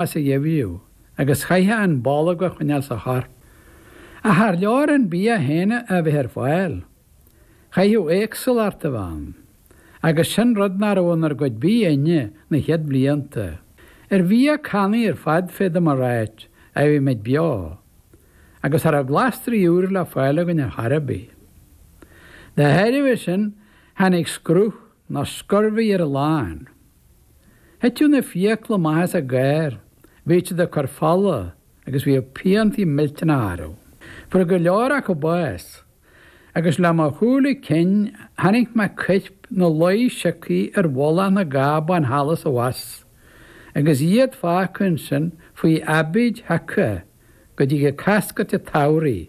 as a gheimhriú agus chaithfeá an bolg a choinneáil sa chorp. Ach char leor an bia féin a bheith ar fáil. Chaithfeadh éagsúlacht a bheith ann. Agus sin rud nach raibh inár gcuid bídh inne na chéad bhlianta. Ar bhia cannaí ar fad féadaim a ráit a bhí muid beo. Agus cha raibh glasraí úra le fáil againn ar chor ar bith. Dá thairbhe sin tháinig scruth Nó scurvy ar a lán. Thiteadh na fiacla amach as a gcár, bhíodh siad ag cur fola agus bhíodh piantaí millteanacha orthu. Fuair go leor acu bás agus le mo shúile cinn chonaic mé coirp ina luí siocthaí ar mhullach na gcábán thall is abhus agus iad fágtha ansin faoi aibíd sheaca go dtigeadh coscairt an tsamhraidh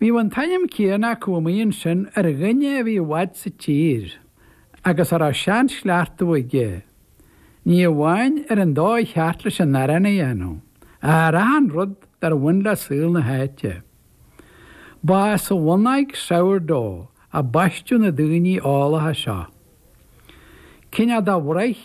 Bhíodh an t-ainm céanna acu amuigh ansin ar dhuine a bhí i bhfad sa tír agus a raibh seanchleachtadh aige, ní amháin ar an dóigh cheart leis an arán a dhéanamh, ach ar achan rud dar bhain le saol na háite. Ba as an bhonnóg Sourdough a baisteadh na daoine eolacha seo. Cinn fhada a bhruith.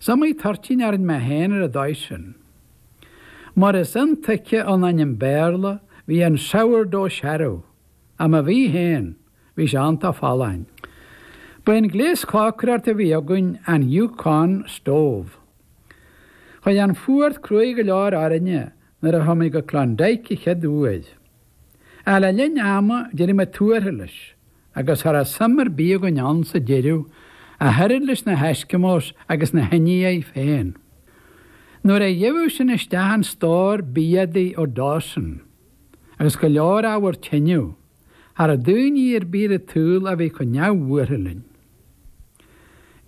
Is iomaí toirtín a rinn mé féin ar an dóigh sin. Mar is intuigthe ón ainm Béarla, bhí an sourdough searbh, ach má bhí féin, bhí sé iontach folláin. Ba é an gléas cócaireachta a bhí againn an Yukon Stove. Chuaigh an fuacht cruaidh go leor orainne nuair a chuaigh muid go Klondike an chéad uair. Ach le linn ama d'éirigh muid tuartha leis agus cha raibh suim ar bith againn ann sa deireadh, ach oiread leis na hEskimos agus na hIndiaigh féin. Nuair a gheibheadh sinn isteach an stór bia adaí ó Dawson, agus go leor ábhar tineadh, cha raibh daoine ar bith ar an tsaol a bhí chomh neamhbhuartha linn.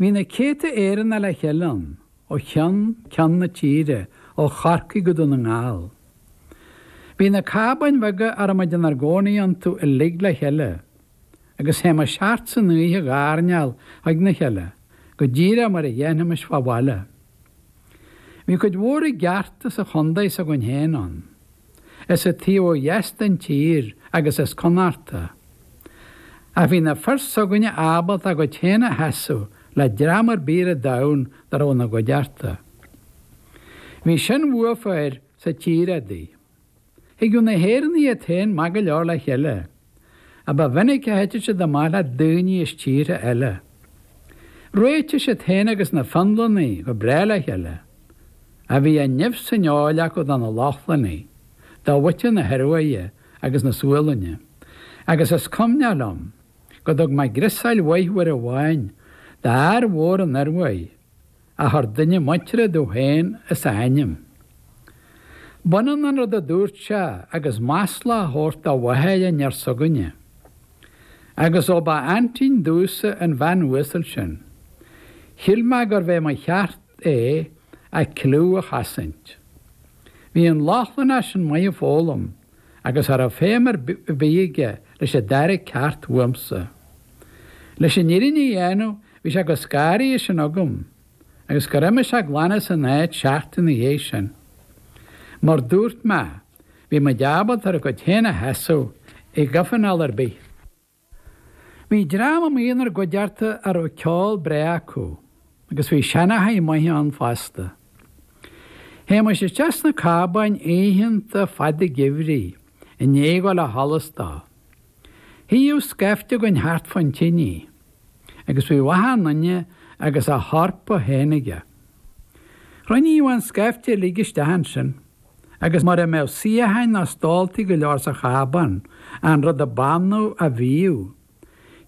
Bhí na céadta Éireannach le chéile ann, ó cheann ceann na tíre, ó Chorcaigh go Dún na nGall. Bhí na cábáin bheaga a raibh muid inár gcónaí iontu uilig le chéile agus théimis thart san oíche ag airneál chuig na chéile go díreach mar a dhéanfaimis fá bhaile. Bhí cuid mhór i gceart as an chontae s'againn féin ann, as an taobh ó dheas den tír agus as Connachta. Ach bhí na fir s'againne ábalta a gcuid féin a sheasamh le dream ar bith ar domhan dá raibh ina gcuideachta. Bhí seanbhua fir sa tír adaí. Thigeadh na hÉireannaigh iad féin maith go leor le chéile, ach ba mhinic a thiteadh siad amach le daoine as tíortha eile. Réitíodh siad féin agus na Fionlannaigh go breá le chéile, ach bhí an nimh san fheoil acu do na Lochlannaigh, do mhuintir na hIoruaidhe agus na Sualainne, agus is cuimhneach liom go dtug mé griosáil mhaith uair amháin d'fhear mhór ón Ioruaidh, a thabhairt duine muinteartha domh féin as a ainm. B'ionann an rud a dúirt sé agus masla a thabhairt do mháthair an fhear s'againne. Agus ó ba aintín domhsa an bhean uasal sin, shíl mé gurbh é mo cheart é a cliú a chosaint. Bhí an Lochlannach sin maith ag foghlaim agus ní raibh feidhm ar bith aige leis an dara ceacht uaimse. Leis an fhírinne a dhéanamh bhí sé chomh scanraithe sin agam agus gur imigh sé glan as an áit seachtain ina dhiaidh sin. Mar dúirt mé, bhí muid ábalta ár gcuid féin a sheasamh i gcomhthionól ar bith. Bhí dream amuigh inár gcuideachta a raibh ceol breá acu agus bhí seanchaithe maithe ann fosta. Théimis isteach sna cábáin oícheanta fada geimhridh i ndiaidh dhul ó sholas dó. Shuíodh scaifte againn thart fán tinidh agus bhíodh achan duine agus a hárpa féin aige. Chruinníodh an scaifte uilig isteach ansin. Agus mura mbeadh suíocháin ná stóltaí go leor sa chábán, an rud a b'annamh a bhíodh,